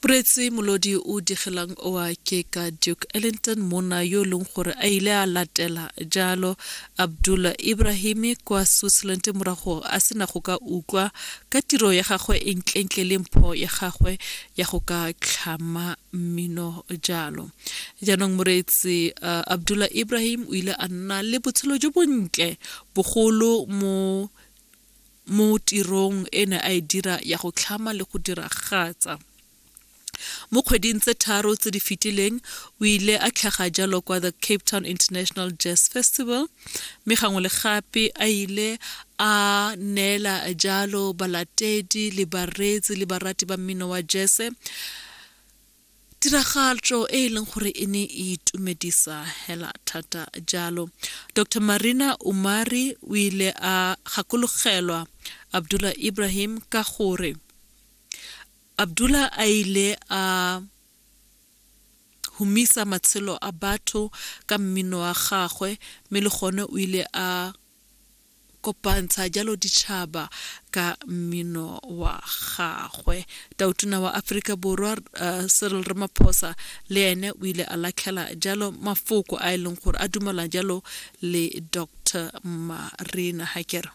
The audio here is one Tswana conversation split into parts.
Puretsi molodi o digelang oa ke ka Duke Ellington monna yo e leng gore a ile a latela jalo Abdullah Ibrahimi kwa Switzerland morago a sena go ka utlwa ka tiro ya gagwe e ntlentle le mpho ya gagwe ya go ka tlhama mmino jalo. Jaanong moreetsi uh, Abdullah Ibrahim o ile a nna le botshelo jo bontle bogolo mo mo tirong e ne a e dira ya go tlhama le go diragatsa. Mo kgweding tse tharo tse di fetileng, o ile a tlhaga jalo kwa the Cape Town International Jazz Festival, mme gangwe le gape a ile a neela jalo balatedi le bareetsi le barati ba mmino wa jese tiragatšo e e leng gore e ne e itumedisa hela thata jalo dr marina umari o ile a gakologelwa abdullah ibrahim ka gore abdullah a ile a humisa matshelo a batho ka mmino wa gagwe mme le gone o ile a kopantsha jalo ditšhaba ka mmino wa gagwe tautona wa aforika borwa uh, cyril ramaphosa le ene o ile a latlhela jalo mafoko a e leng gore a dumela jalo le dr marina hakere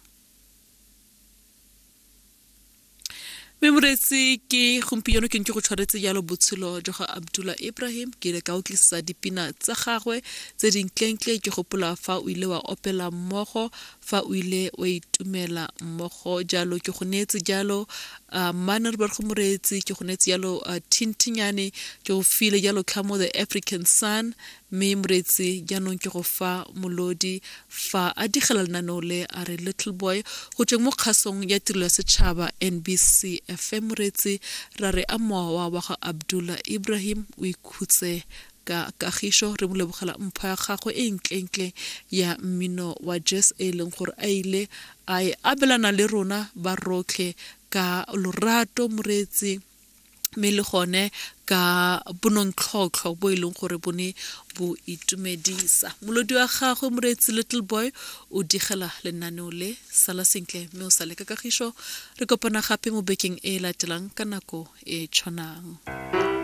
mme moreetsi ke gompieno ke ntse go tshwaretse jalo botshelo jwa ga abdullah ibrahim ke ile ka utlwisisa dipina tsa gagwe tse dintleng-tle ke gopola fa o ile wa opela mmogo fa o ile wa itumela mmogo jalo ke go neetse jalo uh, mane re berego moreetsi ke go neetse jalo uh, thintinyane ke go file jalo tlhamo the african sun Mme Moreetsi jaanong ke go fa molodi fa a digela lenaneo le a re Little Boy go tsweng mo kgasong ya tirelo ya setšhaba NBC FM. Moreetsi ra re a mowa wa ga Abdullah Ibrahim o ikhutse ka kagišo. Re mo lebogela mpho ya gagwe e ntlentle ya mmino wa jazz e e leng gore a ile a e abelana le rona ba rotlhe ka lorato. Moreetsi mme le gone ka bonontlhotlho bo e leng gore bo ne bo itumedisa molodi wa gagwe moreetsi little boy o digela lenaneo le sala sentle mme o sale ka kagišo re kopana gape mo bekeng e e latelang ka nako e tshwanang